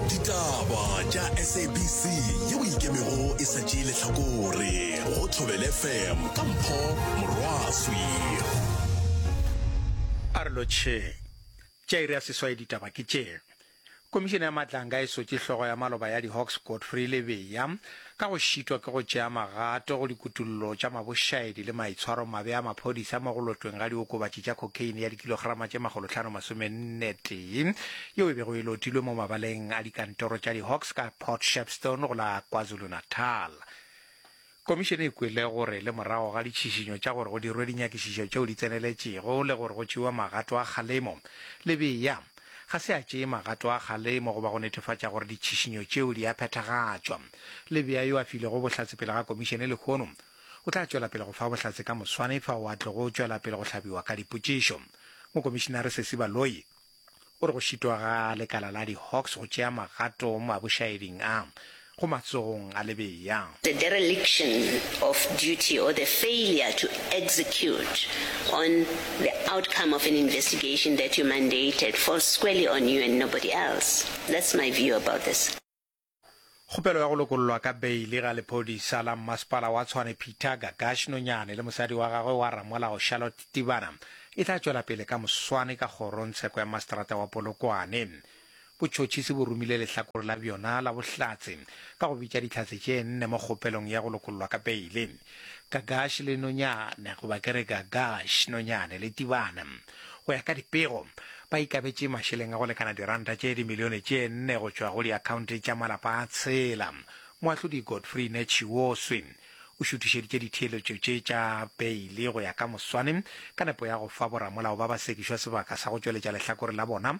ditaba tša sabc yeo e ikemego e sa tšee lehlakore go thobel fm ka mpho morwaswi a re lotšheng tša iri ya seswai ditaba ke tše komišene ya matlanga e sotše hlogo ya maloba ya di-hawks godfrey lebeya ka go šitwa ke go tšea magato go dikutollo tša mabošaedi le maitshwaromabe a maphodisa mo go lotweng ga diokobatši tša cocaine ya dikilograma tše makgolohlano masomennetee yeo e bego e lotilwe mo mabaleng a dikantoro tša di-hawks ka port shepstone go la kwazulu-natal komišene e kwele gore le morago ga ditšhišinyo tša gore go dirwe dinyakišišo tšeo di tseneletšego le gore go tšewa magato a kgalemo lebea ga se a tšee magato a kgalemo goba go netefatša gore ditšhišinyo tšeo di a phethagatšwa. Le bea yo a filego bohlatse pele ga komišene lehono o tla tšwela pele go fa bohlatse ka moswane fao a tlogo tšwela pele go hlabiwa ka dipotšišo. Mokomišenare Sesi Baloyi o re go šitwa ga lekala la di-Hawks go tšea magato mabošaeding a, go matsogong a lebea. The dereliction of duty or the failure to execute on the outcome of an investigation that you mandated falls squarely on you and nobody else. That's my view about this. Kgopelo ya go lokollwa ka beili ga lephodisa la Mmasepala wa Tshwane Peter Gagash Nonyane le mosadi wa gagwe wa ramolao Charlotte Tibana e tla tšwela pele ka moswane ka kgorongtsheko ya Maseterata wa Polokwane. Botšhotšhisi bo romile lehlakore la bjona la bohlatse ka go bitša dihlatse tše nne mo kgopelong ya go lokollwa ka peile. Gagash le Nonyane, goba ke re Gagash, Nonyane le Tibane, go ya ka dipego, ba ikabetše mašeleng a go lekana diranta tše dimilione tše nne go tšwa go diakhaonte tša malapa a tshela. Moahlodi Godfrey Netshioswi o šuthišeditše ditheeletšo tše tša peile go ya ka moswane ka nepo ya go fa boramolao ba ba sekišwa sebaka sa go tšweletša lehlakore la bona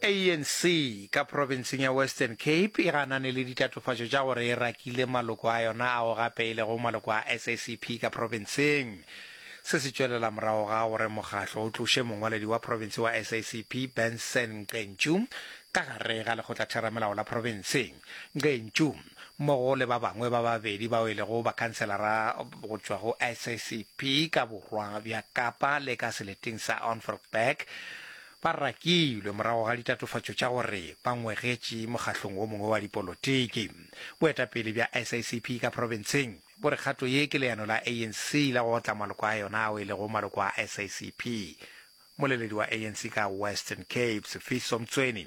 ANC ka profenseng ya Western Cape e ganane le ditatofatšo tša gore e rakile maloko a yona ao gape e lego maloko a SACP ka profenseng. Se se tšwelela morago ga gore mokgatlo o tloše mongwaledi wa profense wa SACP, Benson Ngqentsu, ka gare ga lekgotlatheramelao la profense. Ngqentsu, mmogo le ba bangwe ba babedi bao e lego bakhanselara go tšwa go SACP ka borwa bja Kapa le ka seleteng sa Onfrgberg, Ba rakilwe morago ga ditatofatšo tša gore ba ngwegetše mokgahlong wo mongwe wa dipolotiki. Boetapele bja SACP ka profenseng bo re kgato ye ke leano la ANC la go otla maloko a yona ao e lego maloko a SACP. Moleledi wa ANC ka Western Cape, Sifiso Mtsweni,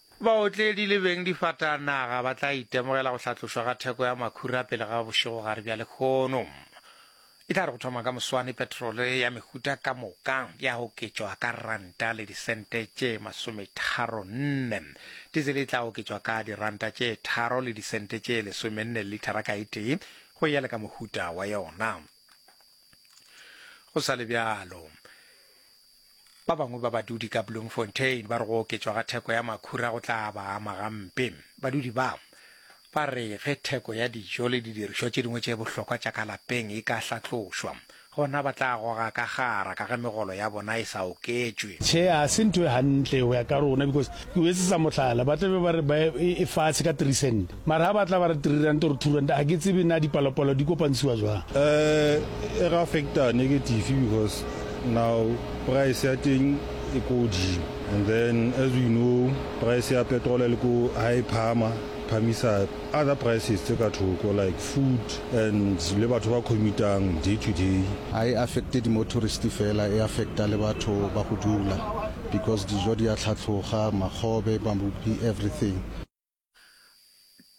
Baotledi le beng difatanaga ba tla itemogela go hlatlošwa ga theko ya makhura pele ga bošegogare bja lekgono. E tla re go thoma ka moswane petrole ya mehuta ka moka ya oketšwa ka ranta le disente tše masometharo nne. Dizele e tla oketšwa ka diranta tše tharo le disente tše lesomenne lithara ka e tee go ya le ka mohuta wa yona. Go sa le bjalo, Ba bangwe ba badudi ka Bloemfontein ba re go oketšwa ga theko ya makhura go tla ba ama gampe. Badudi ba ba re ge theko ya dijo le didirišwa tše dingwe tše bohlokwa tša ka lapeng e ka hlatlošwa, gona ba tla goga ka gara ka ge megolo ya bona e sa oketšwe. Tjhe, ga se ntho e gantle go ya ka rona because ke go etsetsa mohlala, ba tla be ba re ba e fatshe ka three cent. Mara ha ba tla ba re three rand or two rand, ha ke tsebe na dipalopalo di kopantshiwa jwang. Eh, e re affecta negative because now price ya teng e ko godimo and then as we know price ya petrol e le ko ha e phahama phamisa other prices tse ka thoko like food and le batho ba commutang day to day. Ha e affecte di motorist fela, e affecta le batho ba go dula because dijo di a tlhatlhoga, makgobe, mabupi, everything.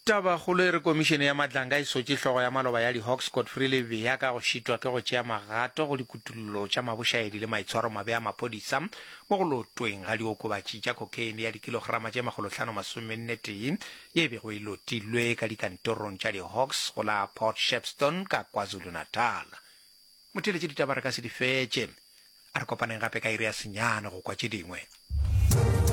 Tabakgolo e re Komišene ya Matlanga e sotše hlogo ya maloba ya di-Hawks Godfrey Lebeya ka go šitwa ke go tšea magato go dikutullo tša mabošaedi le maitshwaromabe a maphodisa mo go lotweng ga diokobatši tša cocaine ya dikilograma tše makgolohlano masomennetee ye e bego e lotilwe ka dikantorong tša di-Hawks go la Port Shepstone ka KwaZulu-Natal. Motheeletše ditaba re ka se di fetše. A re kopaneng gape ka iri ya senyane go kwa tše dingwe.